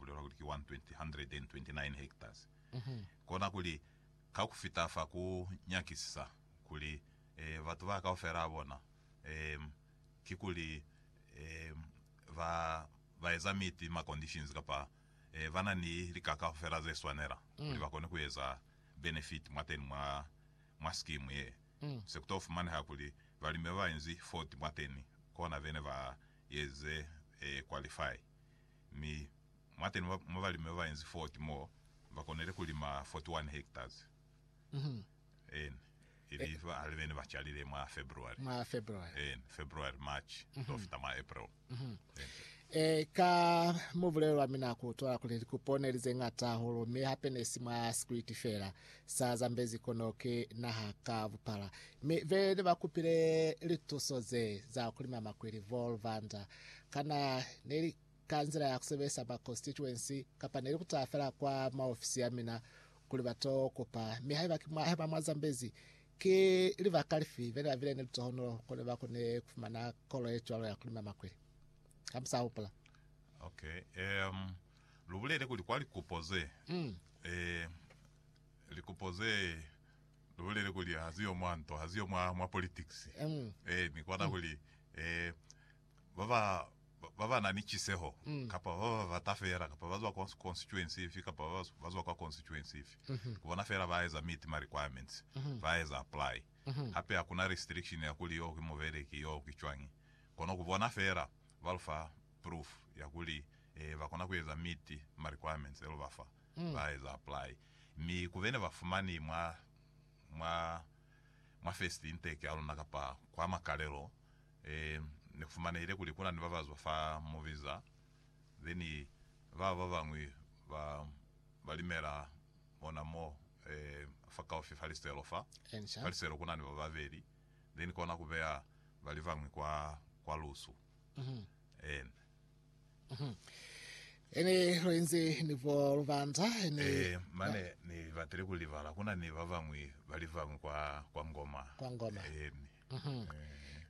bulelwa kuli ki 129 hectares, kona kuli ka ku fita fa ku nyakisisa kuli batu ba kaufela ba bona kikuli ba ba eza miti ma conditions kapa ba na ni lika kaufela ze swanela kuli ba kone ku eza benefit mwateni mwa mwa scheme ye. Se ku to fumaneha kuli balimi ba bainzi 40 mwateni kona bene ba eze qualify. Mi mwateni mwa balimi babainzi 40 mo bakonile kulima 41 hectares ene ili bahali bene bacalile mwa February, Mwa February. ene February, March tofita mwa April. Ene. E, ka mwa bulelo lwa mina ku utwala kuli likupo neli zeñata hahulu, mi hape nesi mwa sikwiti feela. Sa zambezi kono ki naha ka bupala. Mi bene bakupile lituso ze za kulima makwili, Vol. Vander, Kana ne li ka nzila ya ku sebelisa ba constituency kapa ne li ku taha fela kwa maofisi a mina kuli ba to kupa? Mi haiba ki mwa, haiba mwa Zambezi, ki libaka lifi be ne ba bile ni litohonolo ko ne ba kone ku fumana kolo ye cwalo ya ku lima makwili? Ha mu sa hupula. Okay. Um, lu bulele kuli kwa likupo ze, Mm. eh, likupo ze Lu bulele kuli ha ziyo mwa nto, ha ziyo mwa, mwa politics. Ee, ni kona kuli, ee, ba ba, ba ba na ni ciseho, kapa ba ba bata fela, kapa ba zwa kwa constituency ifi, kapa ba ba, ba zwa kwa constituency ifi, ku bona fela ba eza meet ma requirements, ba eza apply. Hape hakuna restriction ya kuli yoo ki mubeleki, yoo ki cwañi. Kono ku bona fela ba lu fa proof ya kuli, ee, ba kona ku eza meet ma requirements e lu ba fa. ba eza apply mi kube ne ba fumani mwa mwa mwa first intake ya luna kapa kwa makalelo e ne ku fumanehile kuli kuna ni ba ba zwa fa mu visa then baba ba bañwi ba ba limela ona mo e fa kaufi fa liselo fa fa liselo kuna ni ba babeli then kona ku beya bali bañwi kwa kwa lusu and Ene luenze ni bo lubanda ene Eh, mane ni batile ku libala kuna ni ba bañwi ba livañwi kwa, kwa Ngoma. Kwa Ngoma. Eni.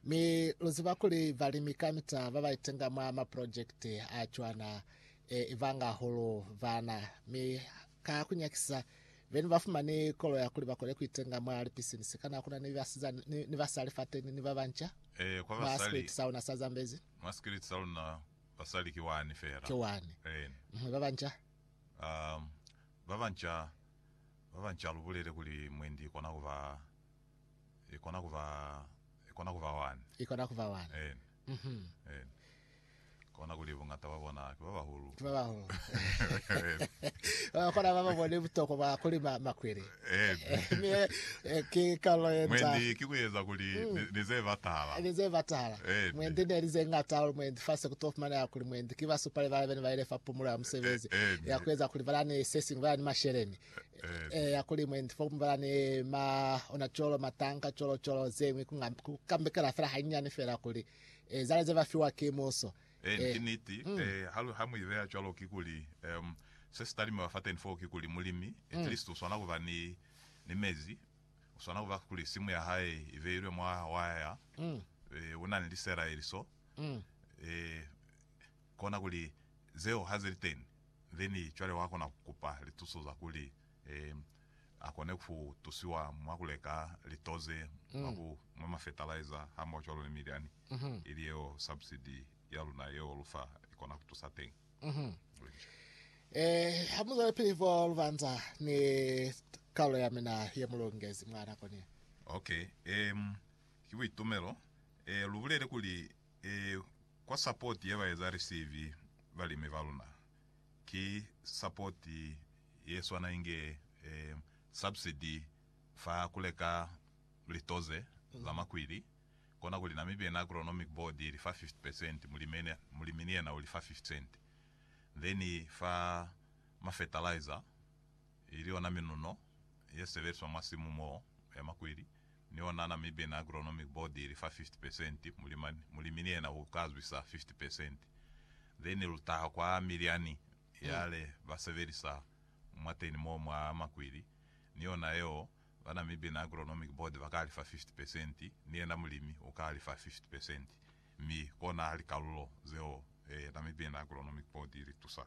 mi luziba kuli balimi kamita baba itenga mwa ma project a cwana e, ibanga hahulu bana mi ka kunyakisa beni bafumani kolo ya kuli bakone kuitenga mwa li business kana kuna ni basizani ni, ni basali fateni ni babanca Eh, kwa mwa basali. street sauna sa Zambezi. Mwa sikiliti sa luna, basali ki wani fela. Ki wani. Eeni. Mhwe ba banca? Um, ba banca, ba banca lu bulele kuli mwendi i kona kuba, i kona kuba, i kona kuba wani. I kona kuba wani. Eeni. Mhm. Eeni. Kona kuli buñata bwa bona ki ba bahulu. Ki ba bahulu. Eeni. Ba kona ba ba bone butokwa bwa kulima makwili. Eebi. Ee, ki kalo ye nca. Mwendi, ki kueza kuli ni, ni ze batala. Ni ze batala. Eebi. Mwendi, neli ze ñata hahulu mwendi, fa se kuto fumaneha kuli mwendi ki basupali bala bene baile fa pumulo ya musebezi, Eebi. ya kueza kuli bala ni sesiñwi, bala ni masheleni, Eebi. ee, ya kuli mwendi, fokuñwi bala ni ma, ona cwalo, matanka, cwalo, cwalo, zeñwi, ku nga, ku kambekela fela hañani fela kuli, ee, zale ze ba fiwa ki muso. Ee, ki niti. Ee, ha mu i beya cwalo, kikuli, um, se si ta limiwa fateni foo, kikuli, mulimi, at least, u swana ku ba ni, ni mezi. U swana ku ba, kuli, simu ya hae i beilwe mwa waya. Ee, u na ni liselaeli so. Ee, kona kuli, zeo ha ze li teni, then cwale wa kona ku kupa lituso za kuli, Ee, a kone ku tusiwa mwa ku leka lito ze mwa ku nwa mafetalaiza hamohacwalo ni milyani, ili yeo subsidi ya luna yeo lu fa i kona ku tusa teñi. Lu inca. Ee, ha mu zwelepili fo lu banza ni Karolo ya mina ye mu longezi mwa nako ni. Ok. Ee, ki buitumelo ee lu bulele kuli ee kwa sapoti ye ba eza receive balimi ba luna. Ki support ye swana inge subsidy fa kuleka litoze za makwili, kona kuli na mibi yena agronomic board ili fa 50 percent, mulimini yena uli fa 50 cent. Then fa ma fertilizer ili yona minuno ye sebelizwa mwa simu mo ya makweli, ni ona na mibe na agronomic board ili fa 50 percent, mulimani, mulimi ni yena u ka zwisa 50 percent. Then lu taha kwa milyani yale ba sebelisa mwateni mo mwa makweli, ni yona yeo ba na mibe na agronomic board ba ka lifa 50 percent, ni yena mulimi u ka lifa 50 percent. Mi kona likalulo zeo na mibe na agronomic board ili tusa.